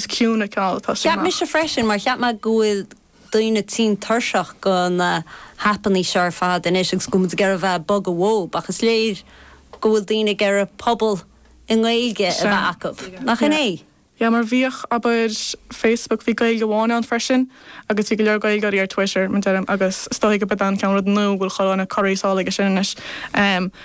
is ciúin a cheal atá sé Cheap amach. mise freisin, mar cheap mé go bhfuil daoine tinn tuirseach de na haipeanna seo ar fad anois agus go bhfuil muid ag iarraidh a bheith ag bogadh uathub, ach is léir go bhfuil daoine ag iarraidh pobal i nGaeilge a Sea. bheith acu, nach Yeah. in é? Yeah, mar bhíodh, abair, Facebook, bhí Gaeilge Amháin ann freisin. Agus bhí go leor Gaeilgeoirí ar Twitter, mar a deirim, agus is dóigh gurb é an cineál rud nua go bhfuil chuile dhuine ag corraí sall aige sin anois.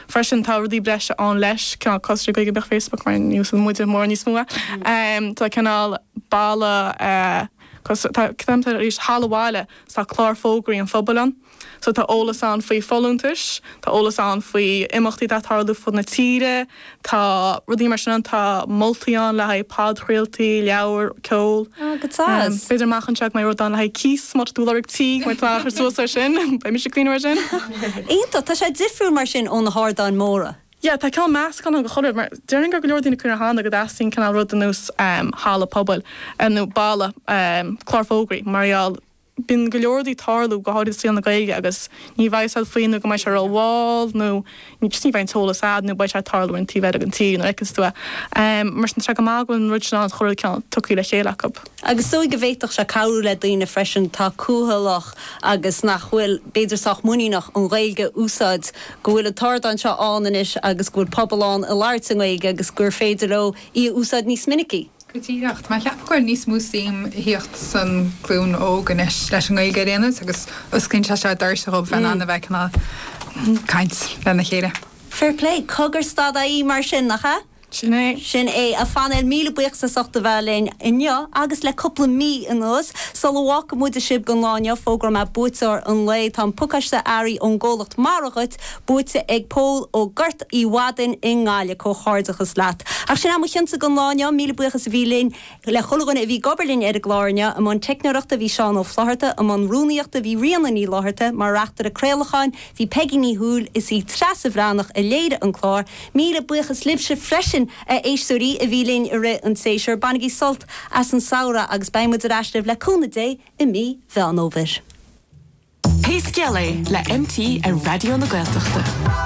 Freisin tá rudaí breise ann leis, cineál cosúil go dtuigeann beag Facebook mar ní úsáideann muide mórán níos mó é. Tá cineál balla, tá, tá, tá, arís, halla baile, is tá clár fógraí an phobail ann. So tá eolas ann faoi folúntais, tá eolas ann faoi imeachtaí atá ag tarlú fud na tíre, tá rudaí mar sin ann, tá moltaí ann le haghaidh podchraoltaí, leabhair, ceol. Oh, go deas. B'fhéidir amach anseo go mbeidh rud ann le haghaidh cíos má tá tú ag lorg tí, má tá chur suas ar sin, beidh mise clean ar sin. Iontach, tá sé difriúil mar sin ó na hardáin móra. Yeah, tá cineál meascán ann go háirid mar déarfainn gur go leor daoine clean a tháinig a dteastaíonn cineál rud ar nós halla pobail nó balla, clár fógraí mar gheall, Bíonn go leor rudaí ag tarlú, go háirid i saol na Gaeilge agus ní bheidh a fhios a'd faoi nó go mbeidh sé rómhall nó just ní bheidh an t-eolas a'd nó beidh sé ag tarlú ar an taobh eile den tír nó fheiceas tú é. Mar sin tá sé go maith go bhfuil an rud sin ann chun cineál tíocht le chéile acu. Agus is dóigh go bhféadfadh sé cabhrú le daoine freisin atá cúthalach agus nach bhfuil b'fhéidir sách muiníneach an Ghaeilge a úsáid, go bhfuil an t-ardán seo ann anois agus go bhfuil pobal ann ag labhairt i nGaeilge agus gur féidir leo í a úsáid níos minicí. Go díreach. Mar cheapfá go bhfuil níos mó suim ag tíocht san glún óg anois leis an nGaeilge a dhéanamh agus osclaíonn sé seo doirse dhóibh bheith in ann a bheith ag caint lena chéile. Fair plé. Cogar dot ie mar sin, nach ea? Sin é. Sin é. A Phainéil, míle buíochas as ucht a bheith linn inniu agus le cúpla mí anuas. Sula bhfágfaimid sibh don lá inniu, fógróidh mé buaiteoir an lae. Tá an pacáiste earraí ón gcomhlacht Mara dhuit. Buaite ag Pól ó Ghort Uí Mhadaín i nGaillimh, comhghairdeachas leat. Ach sin é mo chionsa den lá inniu, míle buíochas as a bheith linn le chuile dhuine a bhí ag obair linn ar an gclár inniu. I mbun teicneoireachta bhí Seán Ó Flaithearta, i mbun rúnaíochta bhí Ríona Ní Fhlaithearta, mar reachtaire craolacháin bhí Peigí Ní Thuathail, is í Treasa Bhreathnach a léirigh an clár. Míle buíochas libhse freisin, a éisteoirí, a bhí linn i rith an tséasúir. Bainigí sult as an samhradh agus beidh muid ar ais libh le cúnamh Dé i mí Mheán Fhómhair. Pé Scéal É le MT ar Raidió na Gaeltachta.